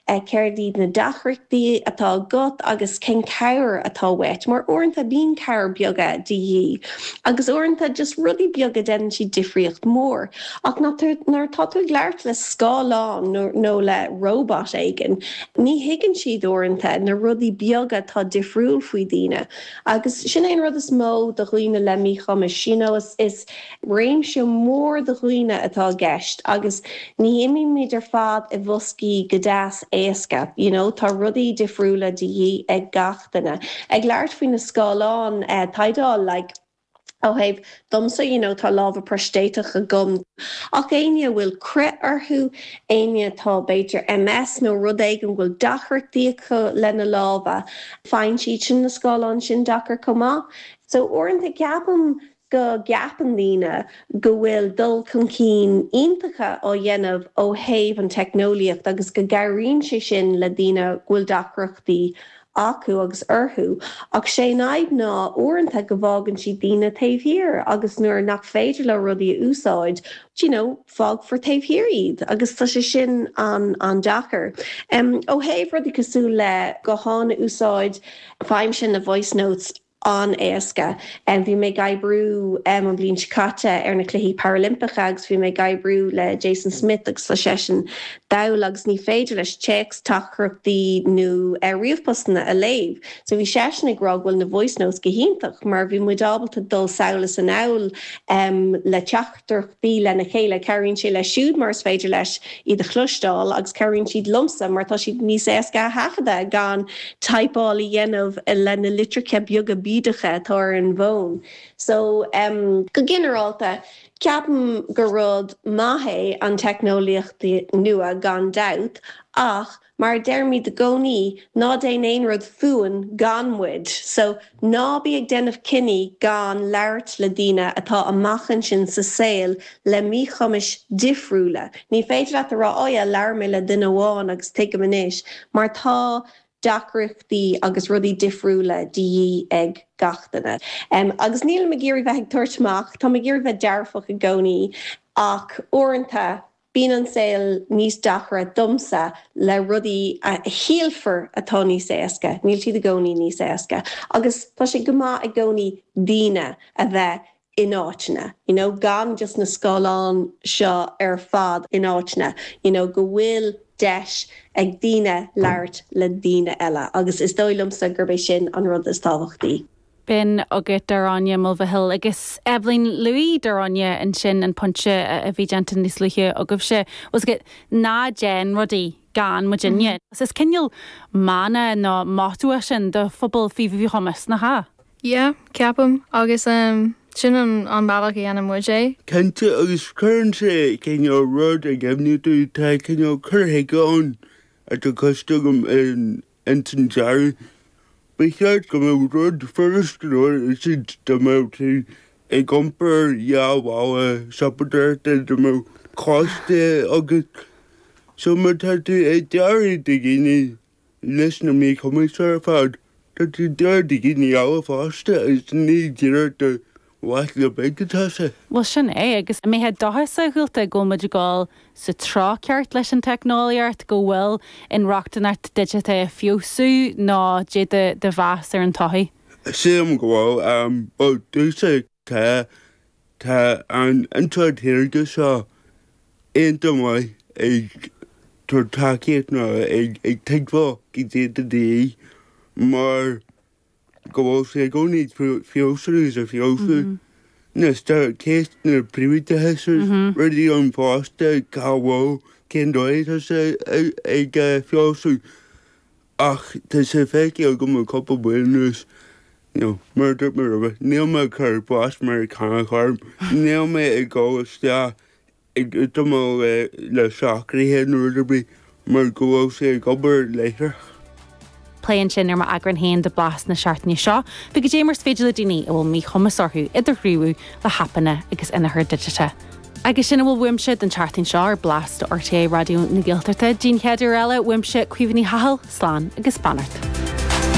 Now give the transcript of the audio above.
céard iad na deacrachtaí atá agat agus cén cabhair atá uait mar uaireanta bíonn cabhair beaga de dhíth agus uaireanta just rudaí beaga déanann siad difríocht mór ach nuair atá tú ag labhairt le scáileán nó le robot éigin ní thuigeann siad uaireanta na rudaí beaga atá difriúil faoi daoine agus sin é an rud is mó do dhaoine le míchumais you know is. Réimse mór de dhaoine atá i gceist agus ní imímid ar fad i mboscaí go deas éasca, you know, tá rudaí difriúla de dhíth ag gach duine. Ag labhairt faoi na scáileáin tadhaill, like, ó thaobh domsa, you know, tá lámha proistéiteach agam, ach éinne a bhfuil crith orthu, éinne atá, b'fhéidir, MS nó rud éigin, a bhfuil deacrachtaí acu lena lámha, faigheann siad sin na scáileáin sin deacair chomh maith. So uaireanta ceapaim go gceapann daoine go bhfuil dul chun cinn iontacha á dhéanamh ó thaobh an teicneolaíocht agus go gcabhraíonn sé sin le daoine go bhfuil deacrachtaí acu agus orthu ach sé an fhadhb ná uaireanta go bhfágann siad daoine taobh thiar agus nuair nach féidir leo rudaí a úsáid you know fágfar taobh thiar iad agus tá sé sin an-deacair. Ó thaobh rudaí cosúil le gutháin a úsáid, faighimse na voice notes an-éasca. Bhí mé ag oibriú an bhliain seo caite ar na Cluichí Parailimpeacha agus bhí mé ag oibriú le Jason Smyth agus tá seisean dall agus ní féidir leis téacs teachtaireachtaí nó ríomhphostanna a léamh so bhí seisean ag rá go bhfuil na voice notes go hiontach mar bhí muid ábalta dul sall is anall le teach taireachtaí lena chéile. Cabhraíonn sé leis siúd mar is féidir leis iad a chloisteáil agus cabhraíonn siad liomsa mar tá siad níos éasca a thaifeadadh gan typeáil a dhéanamh le na litreacha beaga bídeacha atá ar an bhfón. So. Go ginearálta, ceapaim gur rud maith é an teicneolaíocht nua gan dabht ach. Mar a deirimid i gcónaí, ná déan aon rud fúinn gan muid, so ná bí ag déanamh cinní gan labhairt le daoine atá amach ansin sa saol le míchumais difriúla. Ní féidir leat a rá, oh yeah, labhair mé le duine amháin agus tuigim anois, mar tá deacrachtaí agus rudaí difriúla de dhíth ag gach duine. Agus nílim ag iarraidh bheith ag tabhairt amach, táim ag iarraidh bheith dearfach i gcónaí ach uaireanta Bíonn an saol níos deacra domsa le rudaí a shílfear atá níos éasca, níl siad i gcónaí níos éasca agus tá sé go maith i gcónaí daoine a bheith in áiteanna, you know gan just na scáileáin seo ar fad, in áiteanna you know go bhfuil deis ag daoine labhairt le daoine eile agus is dóigh liomsa gurb é sin an rud is tábhachtaí. B'in agat Daráine Mulvihill agus Eibhlín Lughaí. Daráine, Ansin an pointe a bhí déanta níos luaithe agaibhse, tá a fhios agat ná déan rudaí gan muidinne. Is cineál mana nó motto é sin do phobal faoi mhíchumas, nach ea? Yeah, ceapaim. Agus sin an bealach a dhéanann muid é. Cinnte, agus cuireann sé cineál rud i gcuimhne duit, tá cineál cur chuige ann atá cloiste agam in Ins an dearadh, ba cheart go mbeadh rud furast a úsáid dá mbeadh tú ag iompar dhá mhála siopadóireachta dá mbeadh cóiste agat. So má tá tú ag dearadh do dhaoine leis na míchumais ar fad, tá tú ag dearadh do dhaoine eile fosta agus ní díreach do Mhac na Binne atá sa. Bhuel, sin é. Agus an mbeifeá dóchasach go bhfuil muid ag dul sa treo ceart leis an teicneolaíocht, go bhfuil inrochtaineacht digiteach ag feabhsú nó dé do do mheas ar an todhchaí? Sílim go bhfuil. Bhuel, dúiche tá tá an intleacht shaorga seo iontach maith ag tabhairt tacaíocht nó ag ag tuigbheáil goidé goidé mar. go bhfuil sé i gcónaí ag feabhsú is ag feabhsú, anois tá ceist, na príobháideachas is rudaí ann fosta, cá bhfuil, cén dóigh atá sé ag feabhsú ach tá sé feicthe agam le cúpla bliain anuas, you know, mar a dúirt mé roimhe, níl mé ag cur blas Meiriceánach orm, níl mé ag dul isteach ag útamáil le socruithe nó rud ar bith mar go bhfuil sé ag obair láithreach. plé ansin ar m'eagrán féin de blas na seachtaine seo faoi goidé mar is féidir le daoine a bhfuil míchumas orthu idirghníomhú le haipeanna agus inneachar digiteach. Agus sin a bhfuil uaimse don tseachtain seo ar Blas do RTÉ Raidió na Gaeltachta. Go dtí an chéad uair eile uaimse, Caoimhe Ní Chathail, slán agus beannacht.